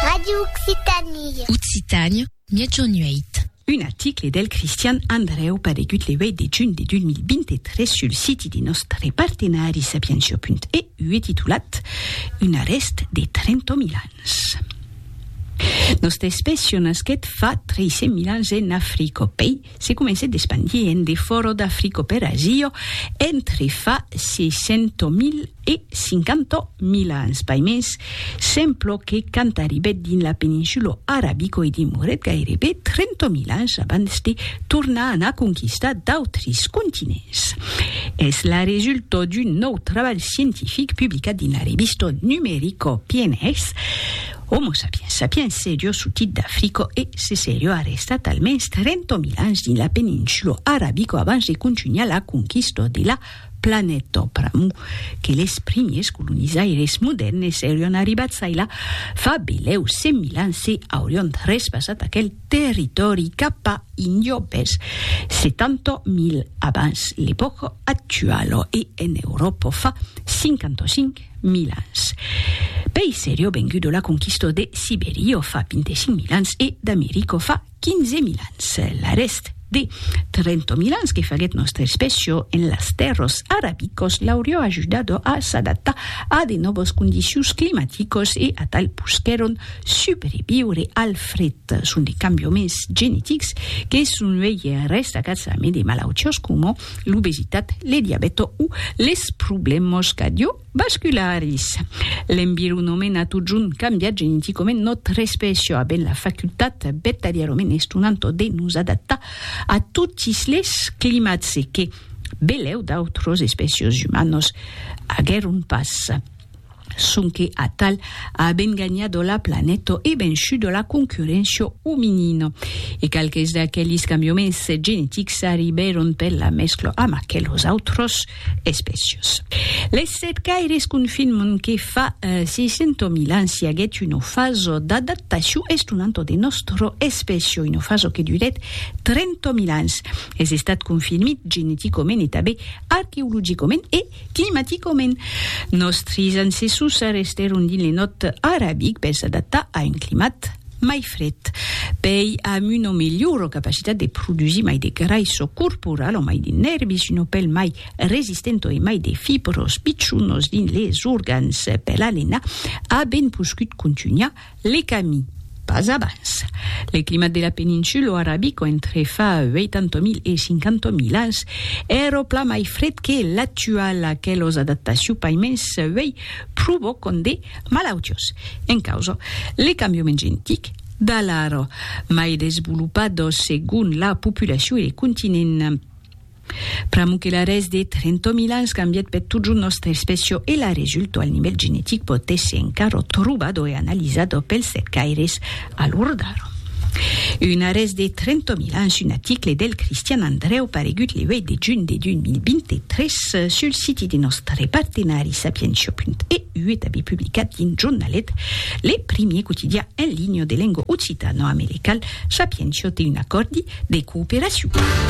Radio Occitanie. Occitània, miègjorn 8. Un article del Cristian Andrèu paregut le 8 de junh de 2023 sul siti de nòstre partenari sapientia.eu e titulat Un arrèst de 30.000 ans. Nòstra espècia nasquèt fa 300.000 ans en Africa, pei Se comencèt d'espandir en de fòro d'Africo per Asio entre fa 600.000 e 50.000 ans, pai mens, semplo que quand arribèt dins la peninsulo Arabico i dimorèt gairebe 30.000 ans abans de tornar anar conquistar d'autres continents. Es la resulta d'un nòu trabalh scientific publicat dins la revista Numerico, PNAS, Homo sapiens sapiens serio sotit d'Africo e se serio arrestat almens 30 mil ans dins la peninsulo arabico abans de contunhar la conquista de la planeta pr'amor que les primiers colonizaires modèrnes serion arribats ailà fa belèu 100 mil ans e aurion trespassat aquel territòri cap a Indio vers 70 mil abans l'epòca actuala e en Euròpa fa 55 mil ans. Pei serio vengudo la conquistò de Siberio fa 25 mil ans e d'Americo fa 15 mil ans. L'arrèst de 30 mil ans que faguèt nòstra especio en las tèrros arabicos l'aurió ajudado a s'adaptar a de nòvos condicions climaticos e atal posquèron subreviure al fret. Son de cambioments genetics que son uei restacats amé de malautiós coma l'obesitat, le diabèto o les problèmas cardiovascularis. L'environament a totjorn cambiat geneticament nòstra espècia a ben la facultat vertadièrament estonanta de nos adaptar a totis les climats e que belèu d'autras espècias umanas aguèron pas. sonque atal a ben ganhado la planeta e vençudo la concurréncia ominina. E qualques d'aquelis cambiaments genetics arribèron per la mescla amb aquelos autres espècias. Les cercaires confirman que fa 600.000 ans i aguèt una fasa d'adaptacion estonanta de nòstra espècia, una fasa que durèt 30.000 ans. Es estat confirmit geneticament e tanben arqueologicament e Climaticament, nòstris ancessors restèron dins le nòrd arabic per s'adaptar a un climat mai fred. Pei am una melhora capacitat de produsir mai de graisso corporal o mai de nèrbis, una pèl mai resistenta e mai de fibras pichonas dins les organs, per la lenha, a ben poscut contunhar Le camí, pas abans. Le climat de la peninsulo arabico entre fa 80.000 e 50.000 ans èro plan mai fred que l'actual, aquelos adaptaciu paiments uèi provocon de malautios. En causa, le cambiament gentic, d'alara, mai desvolopados segon la populaciu e le continent. Pr'amor que l'arrèst de 30.000 ans cambièt per totjorn nòstra espècia e la resulta al nivèl genetic pòt èsser encara trobada e analizada pels cercaires a l'ora d'ara. Un arrèst de 30.000 ans, un article del Cristian Andrèu paregut le 8 de junh de 2023 sul siti de nòstre partenari Sapientia.eu e tanben publicat dins Jornalet, le primièr quotidià en linha de lenga occitana-americal, Sapientia te un acòrdi de cooperacion.